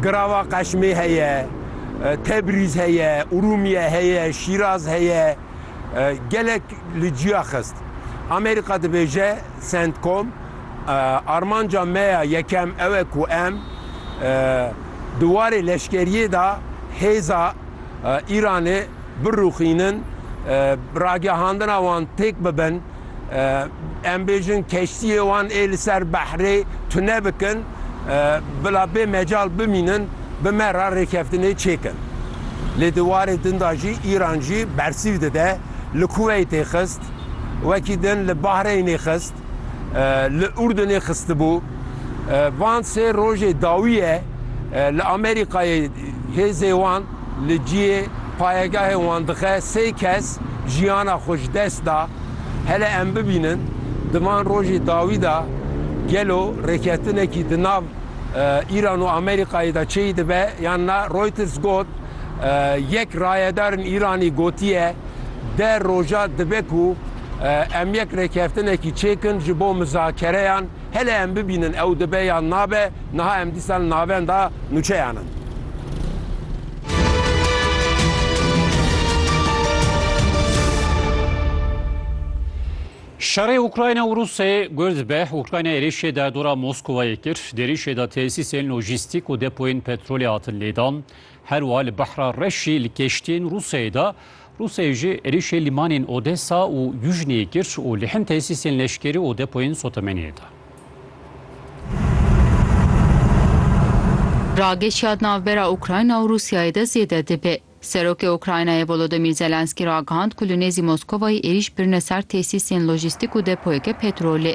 Girava Qeşmê heye, Tebrîz heye, Urûmiye heye, Şîraz heye. Gelek li ciya xist. Amerîka dibêje Centcom, Armanca me ya yekem ew e ku em di warê leşkeriyê de hêza Îranê birûxînin, ragihandina wan têk bibin. em bêjin keştiyê wan ê li ser behrê tune bikin bila bê mecal bimînin bi me re rêkeftinê çêkin. Lê di warê din de jî Îran jî bersîv dide, li Kuweytê xist, wekî din li Bahreynê xist, li Urdunê xistibû. Van sê rojê dawî ye li Amerîkayê hêzê wan, Li cihê payegehê wan dixe sê kes jiyana xwe ji dest da. Hele em bibînin di van rojê dawî de gelo rêketinekî di nav Îran û Amerîkayê de çêy dibe yan na. Reuters got, Yek rayedarên Îranî gotiye, De roja dibe ku em yek rêkeftinekî çêkin ji bo mizakereyan. Hele em bibînin ew dibe yan nabe, niha em dîsa li navenda nûçeyan in. Şerê Ukrayna û Rûsyayê guh dibe, Ukrayna êrîşê derdora Moskowayê kir, di êrîşê de tesîsên lojîstîk û depoyên petrolê hatin lêdan, Her wiha li Behra Reş jî li keştiyên Rûsyayê de Rûsyayê jî êrîşê lîmanên Odesa û Yujneyê kir û li hin tesîsên leşkerî û depoyên sotemeniyê de. Rageşiyat navbera Ukrayna û Rûsyayê de zêde dibe. Serokê Ukraynayê Volodymyr Zelenskî ragihand ku li nêzî Moskovayê êrîş birine ser tesîsên lojîstîk û depoyeke petrolê.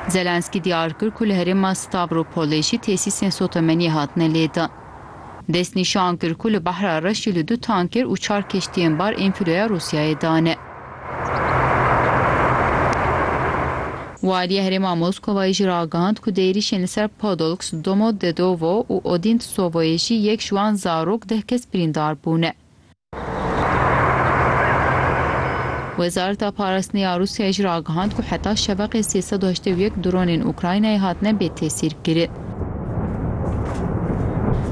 Zelensky diyar kir ku li herêma Stavropolê jî tesîsên sotemeniyê hatine lêdan. Dest nîşan kir ku li Behra Reş jî li du tanker û çar keştiyên bar ên filoya Rûsyayê dane. Waliya herêma Moskowayê jî ragihand ku di êrîşên li ser Podolks, Domodedovo û Odintsovoyê jî yek ji wan zarok deh kes birîndar bûne. Wezareta Parastinê ya Rûsyayê jî ragihand ku heta şeveqê sê sed û heştê û yek dronên Ukraynayê hatine bêtesîrkirin.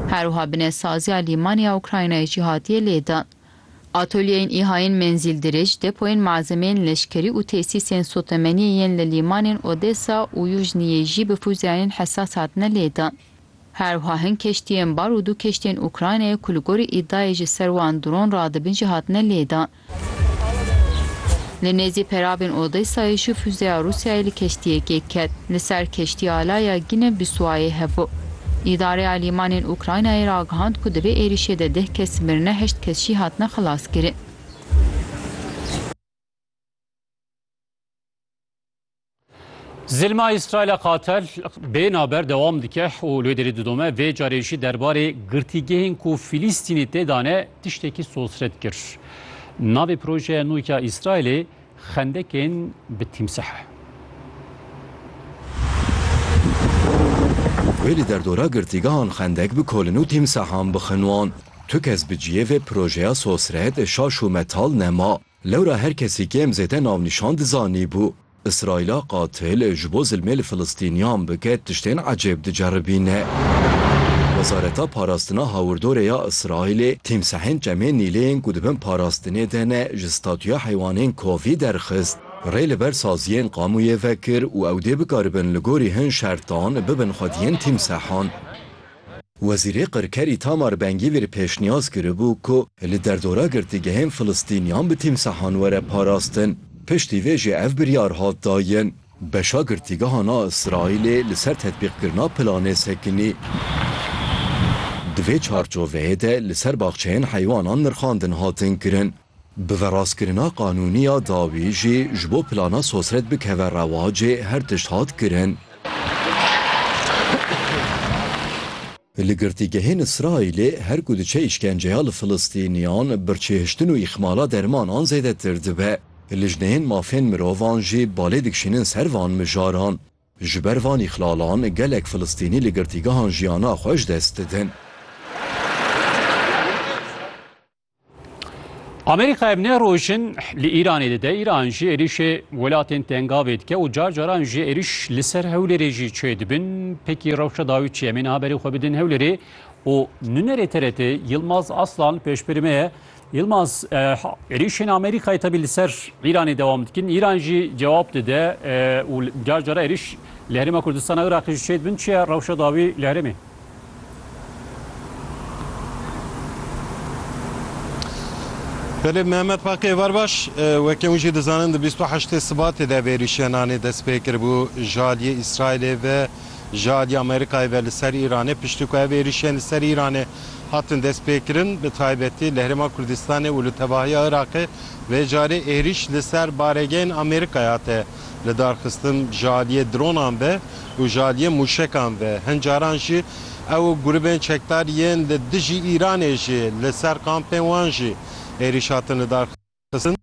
Her wiha binesaziya lîmanê ya Ukraynayê jî hatiye lêdan. Atolyeyên îhayên menzîldirêj, depoyên malzemeyên leşkerî û tesîsên sotemeniyê yên li lîmanên Odesa û Yujniyê jî bi fûzeyayên hesas hatine lêdan. Herwiha hin keştiyên bar û du keştiyên Ukraynayê ku li gorî îdayê ji ser wan dron radibin jî hatine lêdan. Li nêzî peravên Odesayê jî fuzeya Rûsyayê li keştiyekê ket. Li ser keştiya ala ya Gine Biswayê hevo. Îdareya Lîmanên Ukraynayê ragihand ku di vê êrîşê de deh kes mirine heşt kes jî hatine xelaskirin. Zilma Îsraîla qatel bê naber dewam dike û lê derî didome vê carê jî derbarê girtîgehên ku Filîstînî tê de ne tiştekî sosret kir. Navê projeya nû ya Îsraîlê xendekên bi tîmsih e. Wê li derdora girtîgehan xendek bi kolin û tîmsihan bixin wan. Tu kes bi ciyê vê projeya sosret şaş û metal nema. Lewra her kesî kêm zêde navnîşan dizanî bû Îsraîla qatil ji bo zilmê li Filistîniyan bike tiştên ecêb diceribîne. Wezareta Parastina Hawirdorê ya Îsraîlê tîmsehên çemên Nîlê yên ku di bin parastinê de ne ji statuya heywanên kovî derxist. Rê li ber saziyên qamûyê vekir û ew dê bikaribin li gorî hin şertan bibin xwediyên tîmsehan. Wezîrê Qirker Îtamar Ben-Gîvîr pêşniyaz kiribû ku li derdora girtîgehên Filistîniyan bi tîmsahan were parastin. Piştî vê jî ev biryar hat dayin. Beşa girtîgehan a Îsraîlê li ser tetbîqkirina planê sekinî. Di vê çarçoveyê de li ser baxçeyên heywanan nirxandin hatin kirin. Bi verastkirina qanûnî ya dawî jî ji bo plana sosret bikeve rewacê her tişt hat kirin. Li girtîgehên Îsraîlê her ku diçe îşkenceya li Filistîniyan, birçêhiştin û îxmala dermanan zêdetir dibe. Lijneyên mafên mirovan jî balê dikişînin ser van mijaran. Ji ber van îxlalan gelek Filistînî li girtîgehan jiyana xwe ji dest didin. Amerîka ev ne rojin li Îranê dide Îran jî êrişê welatên tengavê dike û car caran jî êriş li ser Hewlêrê jî çê dibin. Pekî rewşa dawî çi ye? Em ê niha berê xwe bidin Hewlêrê û nunerê TRT Yilmaz Aslan pêşberî me ye. Yilmaz êrişên Amerîkayê tevî li ser Îranê dewam dikin. Îran jî cewab dide û car cara êriş li Herêma Kurdistana Iraqê jî çê dibin. Çi ye rewşa dawî li herêmê? Belê Mehmet Baqê Êvarbaş, weke hûn jî dizanin di bîst û heştê Sibatê de vêrîşiya nanê dest pê kiribû ji aliyê Îsraîlê ve ji aliyê Amerîkayê ve li ser Îranê. Piştî ku ev êrîşiyên li ser Îranê hatin dest pê kirin bi taybetî li Herêma Kurdistanê û li tevahiya Iraqê vê carê êrîş li ser baregehên Amerîkayê hate lidarxistin ji aliyê dronan ve û ji aliyê mûşekan ve. Hin caran jî ew û grûbên çekdar yên li dijî Îranê jî li ser kampên wan jî êrîş hatin lidarxistin.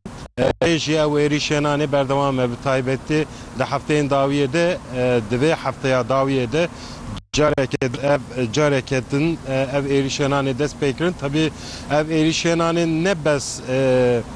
Lê jî ew êrîşên anê berdewam e. Bi taybetî di hefteyên dawiyê de di vê hefteya dawiyê de careke din ev careke din ev êrîşên anê dest pê kirin. Tevî ev êrîşên anê ne bes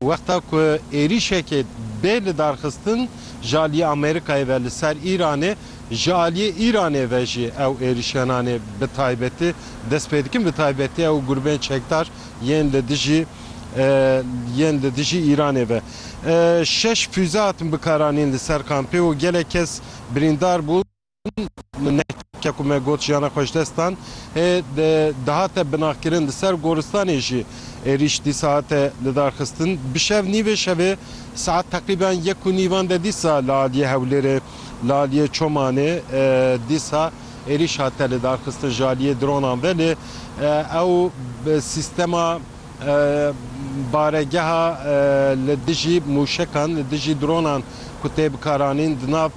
Wexta ku êrîşekê bê lidarxistin ji aliyê Amerîkayê ve li ser Îranê, ji aliyê Îranê ve jî ew êrîşgenanê bi taybetî dest pê dikin, bi taybetî ew grûbên çekdar yên li dijî yên li dijî Îranê ve. Şeş fûze hatin bikaranîn li ser kampê û gelek kes birîndar bûn. min nehke ku me got jiyana xwe ji dest dan hê dihate binagkirin di ser goristanê jî êrîş dîsa hate lidarxistin bi şev nîvê şevê saet teqrîben yek û nîvan de dîsa li aliyê hewlêrê li aliyê çomanê dîsa êrîş hate lidarxistin ji aliyê dronan ve lê ew sistema Baregeha li dijî mûşekan, li dijî dronan ku tê bikaranîn di nav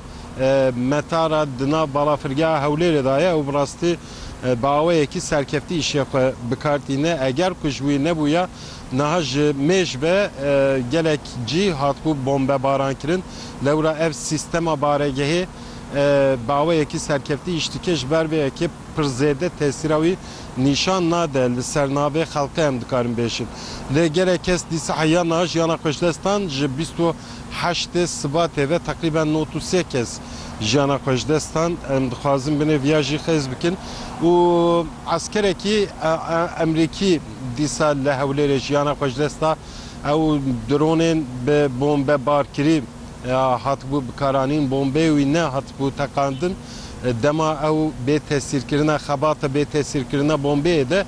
Meta re di nav Balafirgeha Hewlêrê de ye û bi rastî bi awayekî serkeftî îşê xwe bi kar tîne. Eger ku ji wî nebûye niha ji mêj ve gelek cî hatibû bombebarankirin. Lewra ev sîstema baregehê bi awayekî serkeftî îş dike, ji ber vê yekê pir zêde tesîra wî nîşan nade li ser navê xelkê em dikarin bêjin. Lê gelek kes dîsa heya niha jiyana xwe ji dest dan, ji bîst û heştê Sibatê ve teqrîben nod û sê kes jiyana xwe ji dest dan. Em dixwazin binê viya jî xêz bikin û eskerekî Emrîkî dîsa li Hewlêrê jiyana xwe ji dest da. Ew dronên bi bombe bar kirî hatibû bikaranîn, bombeyê wî ne hatibû teqandin. Dema ew bê tesîrkirina xebata bê tesîrkirina bombeyê de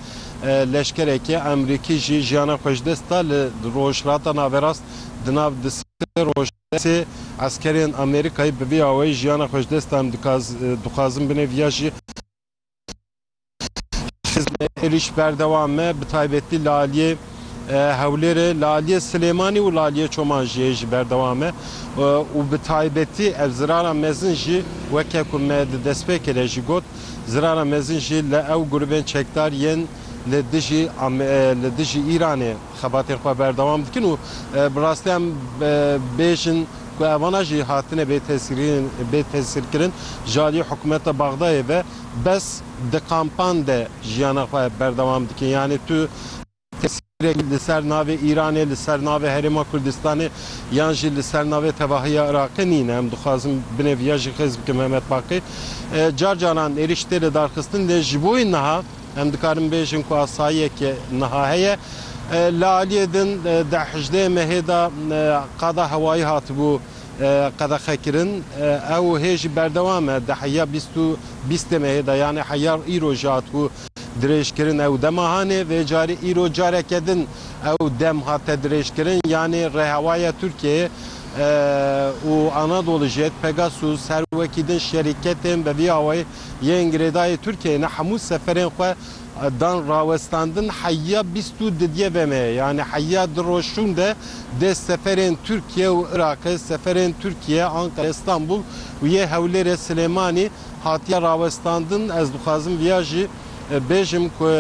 leşkerekî Amerîkî jî jiyana xwe ji dest da li Rojhilata Naverast di nav di sê roj de sê eskerên Amerîkayî bi vî awayî jiyana xwe ji dest dan dixwazin binê viya jî Hizmê êrîş berdewam e bi taybetî li aliyê Hewlêrê, li aliyê Silêmanî û li aliyê Çoman jî hê jî berdewam e û bi taybetî ev zirara mezin jî weke ku me di destpêkê de jî got zirara mezin jî li ew grûbên çekdar yên li dijî li dijî Îranê xebatên xwe berdewam dikin û bi rastî em bêjin ku evana jî hatine bêtesîrkirin ji aliyê hikûmeta Bexdayê ve bes di kampan de jiyana xwe berdewam dikin yanî tu tesîrek li ser navê Îranê, li ser navê Herêma Kurdistanê yan jî li ser navê tevahiya Iraqê nîn. Em dixwazin binê viya jî xêz bikin Mehmet Baqî car caran êrîş tê lidarxistin lê ji bo wî niha, Em dikarin bêjin ku asayiyeke niha heye. Li aliyê din di hejdê mehê de qada hewayî hatibû qedexekirin. Ew hê jî berdewam e. Di heya bîst û bîstê mehê de yanê heya îro jî hatibû dirêjkirin. Ew dema hanê vê carî îro careke din ew dem hate dirêjkirin. Yanê Rêhewaya Tirkiyeyê û Anadolu Jet, Pegasus her wekî din şerîketên bi vî awayî yên girêdayê Tirkiyeyê ne hemû seferên xwe dan rawestandin heyya bîst û didye ve me ye yanî heyya di roj şûn de dê seferên Tirkiye û Iraqê seferên Tirkiye Anqere Istanbul û yê Hewlêrê Silêmanî hatiye rawestandin ez dixwazim viya jî bêjim ku